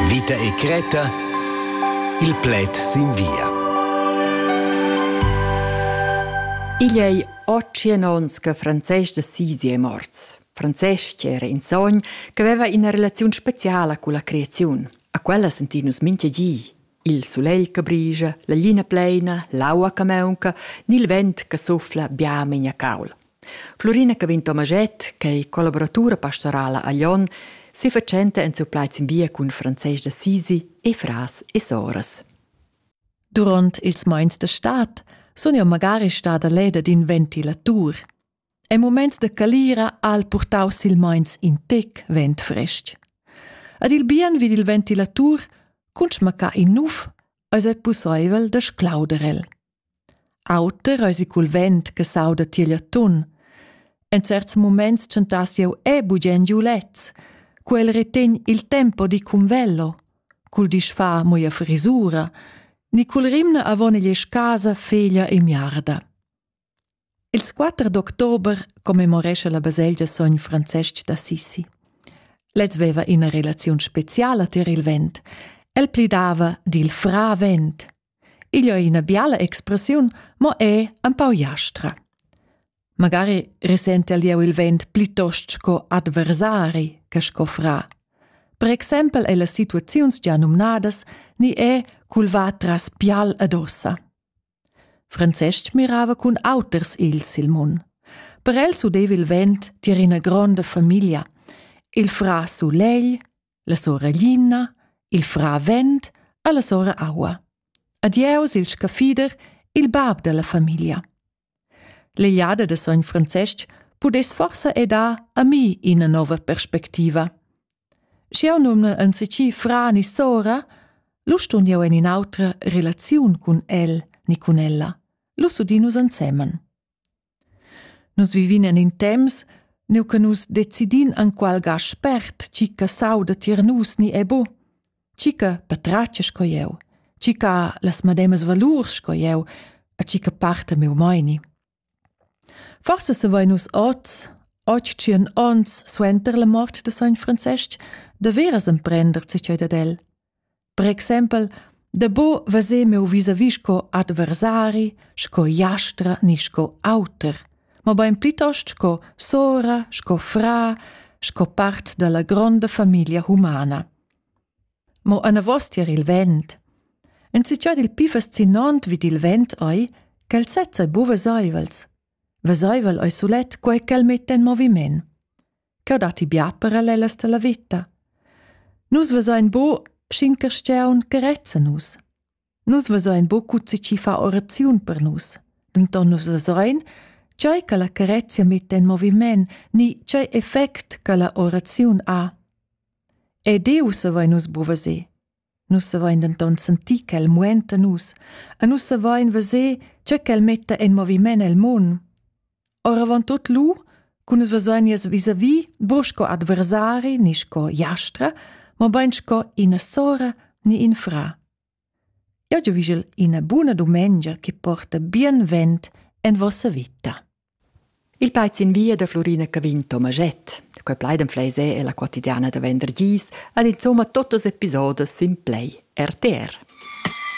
Vita e cretta il pled sin via. Igl ei otschien onns che Francesc de Sisi è morts. Francesc era in sogn che aveva ina relazione speciala con la creazione. A quella sentin nus minche gi. Il sulegl che brigia, la glina pleina, l'aua che maunca, ni il vent che suffla bia memia caul. Florina Cavin Tomaget, che è collaboratura pastorala a Lyon, si facenta en suo plaiz in via cun Francesc d'Assisi e fras e soras. Durant ils mais de stat sun jeu magari stada leda d'in ventilatur. En muments da calira ha el purtau silmeins in tec vent frestg. Ed il bien vid il ventilatur, cun schmaccar in nuf, eis ei pusseivel da sclauder el. Auter eisi cul vent che sauda tiegl atun. En certs muments tschentass jeu e bugen giu lez, cu el retegn il tempo di cun velo, cul disfa moia frisura, ni cul rimna avon igl casa feglia e miarda. Ils quatter d'october commemorescha la baselgia sogn Francestg d'Assisi. Lez veva ina relaziun speciala tier il vent. El plidava dil fra vent. Igl è ina biala expressiun, mo è empau jastra. Magari risente el jeu il vent plitost sco adversari che sco fra. Per exempel è las situaziuns già numnadas ni è culva tras pial ad ossa. Francestg mirava cun auters ils il mun. Per el s'udeva il vent tier ina gronda famiglia. Il fra sulegl, la sora Lina, il fra vent e la sora aua. Adieus il scaffider, il bab della famiglia. L'egliada de sogn Francestg pudess forsa ed ha a mi ina nova perspectiva. Sch'jeu numnel enzatgi fra ni sora, lu stun jeu en in'autra relaziun cun el ni cun ella. Lu s'udin nus ensemen. Nus vivin en in temps, neu che nus decidin enqual ga spert tgi che sauda tier nus ni è bu, tgi che patratga sco jeu, tgi che ha las medemas valurs sco jeu e tgi che parta miu meini. Forse savein nus oz, oggi tschien ons suenter la mort de sogn Francesc, daveras emprender zatgei dad el. Per exempel, da bo veser meu vis-à-vis sco adversari, sco jastra ni sco auter, mobein plitost sco sora, sco fra, sco part dalla gronda famiglia humana. Mo anavos tier il vent. Enzatgei il pli fascinant vid il vent ei ch'el sezza ei buca veseivels. Veseivel ei sulet quei ch'el metta en moviment. Cheu datti bia parallelas dalla veta. Nus vesein bu sc'in carstgaun che rezza nus. Nus vesein buca tgi chi fa oraziun per nus, denton nus vesein, tgei che la carezia metta en moviment ni tgei effect che la oraziun ha. E Diu savein nus bu veser. Nus savein denton sentir ch'el muenta nus e nus savein veser tge ch'el metta en moviment el mund. Oravant tut lu, cu nus vesein nies vis-a-vis bu sco adversari ni sco jastra, mobein sco ina sora ni in fra. Jeu giuvischel ina buna dumengia che porta bienvent en vossa vita. Il paiz in via da Florina Cavin Tomaschett, da quei plaid en Fleisé e la quotidiana da vendergis, han insomma totas episodas sin Play RTR.